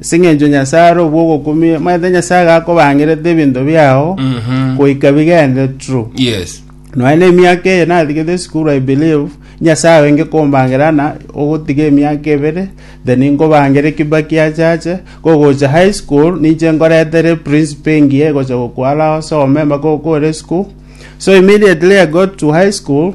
Ase engencho Nyasae are obwogokumia, omanyete Nyasae gakobangerete ebinto biao Mhm. goika bigende true. Yes. Nonya na emiaka eye natigete esukuru I believe Nyasae wenge kombangera na ogotiga emiaka ebere then nkobangere kibaki achache kogocha high school ninche nkoretere principal engiya egocha gokwara osome mpaka okore school so immediately I got to high school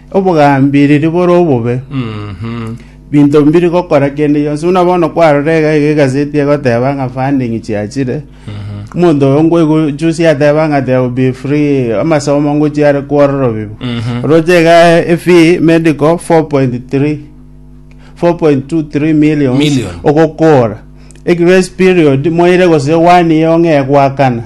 Obogambiriri bore obobe. Binto mbiri gokora kende gionsi. Buna bono kwarora iga iga egaseti egoteba ng'a funding chiachire. Omonto oyo ngoigwa juzi ateba ng'a there will be free amasomo ngochia are kworora obibu. Oroche iga efee medical 4.3 4.23 millions Million. ogokora. e grace period moire gose one year ong'e goakana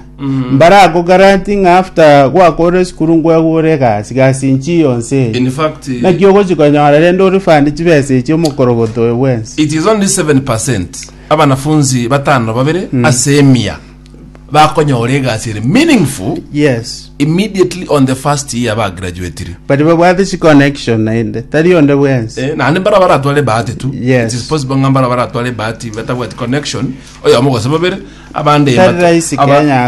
mbare ako garanti ng'a after gwakorire esukuru nkwegure egasi gasi inchi yonsi eye In fact, naki ogochi konyora rende orifande chibesa echi omokorogoto oyo bwensi it is only 7% abanafunzi batano babere ase emia bakonyora egasi ere meaningful yes immediately on the first year bagraduatire but babwate chi connection naende tari onde bwensi Eh, naende mbara baratware bahati tu Yes. It is possible ng'a mbara baratware bahati batabwati connection oyomo gose babere abande Tari rahisi Kenya